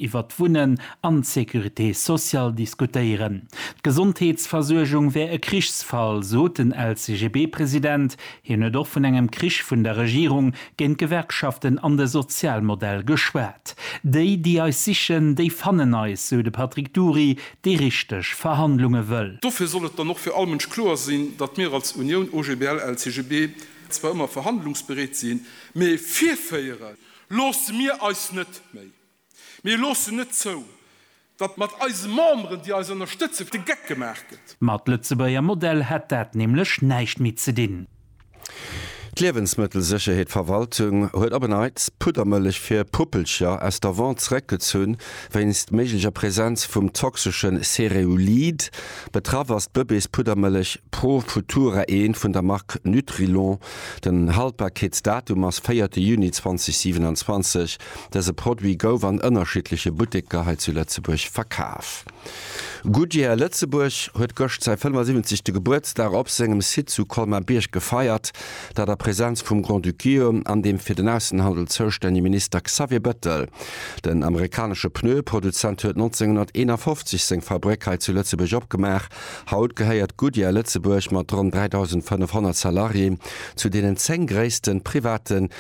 iwwert d'Wunnen an d'Sécurité sociale diskutéieren. D'Gesondheetsversuergung wär e Krichsfall, sot den LCGB-President. Hien huet och vun engem Krich vun der Regierung géint d'Gewerkschaften an de Sozialmodell geschwat. Déi, déi eis sichen, déi fannen eis, sou de Patrick Dury, dee richteg Verhandlunge wëll. Dofir soll et dann och fir all Mënsch kloer sinn, datt mir als Unioun OGBL-LCGB zwar ëmmer verhandlungsbereet sinn, mee virféiere loosse mir eis net méi. Mir loossen net zou, datt mat eise Memberen, déi eis ënnerstëtzen, de Geck gemaach gëtt. Mat Lëtzebuerger Modell hätt dat nämlech näischt méi ze dinn. D'Liewensmëttelsécherheetverwaltung huet op en Neits d'Puddermëllech fir Puppelcher aus der Vente zeréckgezunn, wéinst méiglecher Präsenz vum toxesche Cereulid. Betraff ass d'Bëbeespuddermëllech Pro Futura Een vun der Mark Nutrilon. Den Haltbarkeetsdatum ass véierte Juni 2027. Dëse Produit gouf an ënnerschiddleche Butteker hei zu Lëtzebuerg verkaf. Goodyear Lëtzebuerg huet gëscht säi 75. Gebuertsdag op sengem Site zu Colmar-Bierg gefeiert, dat a Präsenz vum Grand-Duceo an dem fir den Aussenhandel zoustännege Minister Xavier Bettel. Den amerikanesche Pneue-Produzent huet 1951 seng Fabrick hei zu Lëtzebuerg opgemaach. Haut gehéiert Goodyear Lëtzebuerg mat ronn 3.500 Salarié zu deenen 10 gréisste private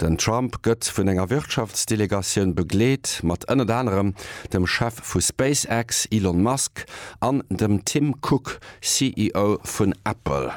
Den Trump gëtt vun enger Wirtschaftsdelegatioun begleet, mat ënnert anerem dem Chef vu SpaceX, Elon Musk, an dem Tim Cook, CEO vun Apple.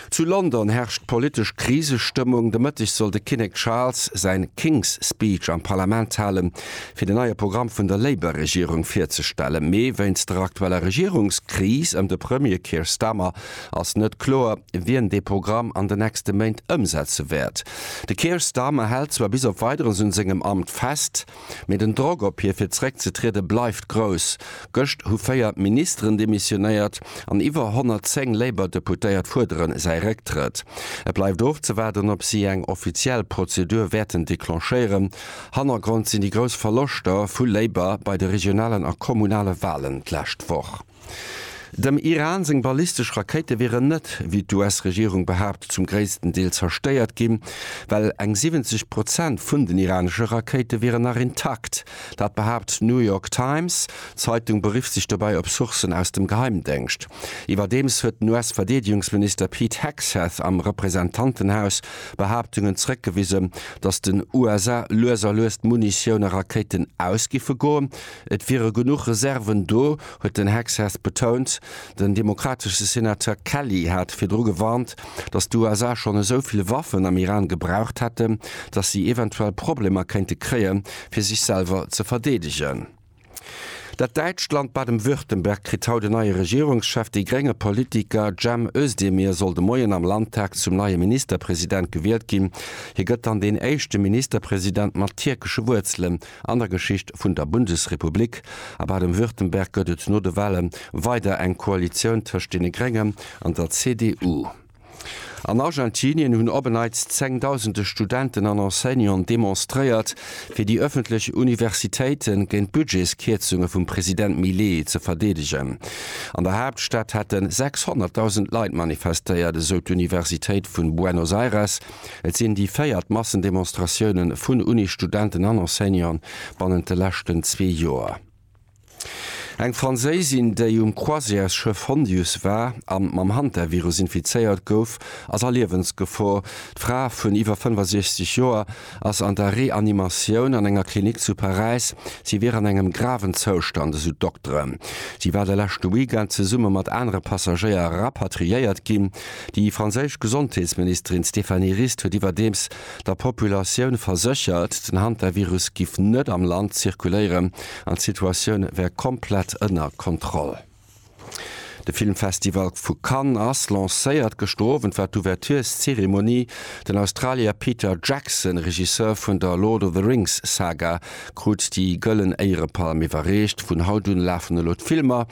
Zu London herrscht politesch Krisestëmmung. De Mëtteg soll de Kinnek Charles säin King's Speech am Parlament halen, fir de neie Programm vun der Labour-Regierung virzestellen. Mee wéinst der aktueller Regierungskris ëm de Premier Keir Starmer ass net kloer, wien dee Programm an de nächste Méint ëmsetze wäert. De Keir Starmer hält zwar bis op Weideres un sengem Amt fest, mee den Drock op hie fir zeréckzetriede bleift grouss. Gëscht hu véier Ministeren demissionéiert an iwwer 110 Labour-Deputéiert fuerdere säi Récktrëtt. Et bleift ofzewaarden, ob si eng offiziell Prozedur wäerten declenchéieren. Hannergrond sinn déi grouss Verloschter vu Labour bei de regionalen a kommunale Walen d'lescht Woch. Dem Iran seng ballistesch Rakéite wieren net, wéi d'US-Regierung behaapt, zum gréissten Deel zerstéiert ginn, well eng 70 Prozent vun den iranesche Rakéite wieren nach intakt. Dat behaapt d'New York Times. D'Zeitung berifft sech dobäi op Sourcen aus dem Geheimdéngscht. Iwwerdeems huet den US-Verdeedegungsminister Pete Hegseth am Representantenhaus Behaaptungen zeréckgewisen, datt den USA lues a lues d'Munitioun a Rakéiten ausgiffe goen, Et wiere genuch Reserven do, huet den Hegseth betount. Den demokratesche Senateur Kelly hat virdru gewarnt, datt d'USA schonn esou vill Waffen am Iran gebraucht hätten, datt si eventuell Problemer kéinte kréien, fir sech selwer ze verdeedegen. Dat däitscht Land Baden-Württemberg kritt haut en neie Regierungschef. Dee grénge Politiker Cem Özdemir soll de Moien am Landtag zum neie Ministerpresident gewielt ginn. Hie gëtt dann deen éischte Ministerpresident mat tierkesche Wuerzelen An der Geschicht vun der Bundesrepublik a Baden-Württemberg gëtt et no de Wale weider eng Koalitioun tëscht deene Gréngen an der CDU. An Argentinien hunn op en Neits zengdausende Studenten an Enseignanten demonstréiert, fir déi ëffentlech Universitéite géint d'Budgetskierzunge vum President Milei ze verdeedegen. An der Haaptstad hätte 600.000 Leit manifestéiert, esou d'Universitéit vu Buenos Aires. Et sinn déi véiert Massendemonstratioune vun Unisstudenten an Enseignanten bannent de leschten zwee Joer. Eng Fransaisin, déi um Croisièresschëff Hondius war an mam Hantavirus infizéiert gouf, ass a Liewensgefor. D'Fra vun iwwer 65 Joer ass an der Reanimatioun an enger Klinik zu Paräis. Si wier an engem graven Zoustand, esou d'Dokteren. Si war de leschte Weekend zesumme mat anere Passagéier rapatriéiert ginn. Déi franséisch Gesondheetsministerin Stéphanie Rist huet iwwerdeems der Populatioun verséchert, den Hantavirus giff net am Land zirkuléieren an d'Situatioun wär komplett ënner Kontroll. De Filmfestival vu Cannes ass lancéiert. Gëschter Owend war d'Ouvertureszeremonie. Den Australier Peter Jackson, Regisseur vun der Lord of the Rings Saga, krut déi Gëllen Éierepalm iwwerreecht. Vun haut un lafen elo d'Filmer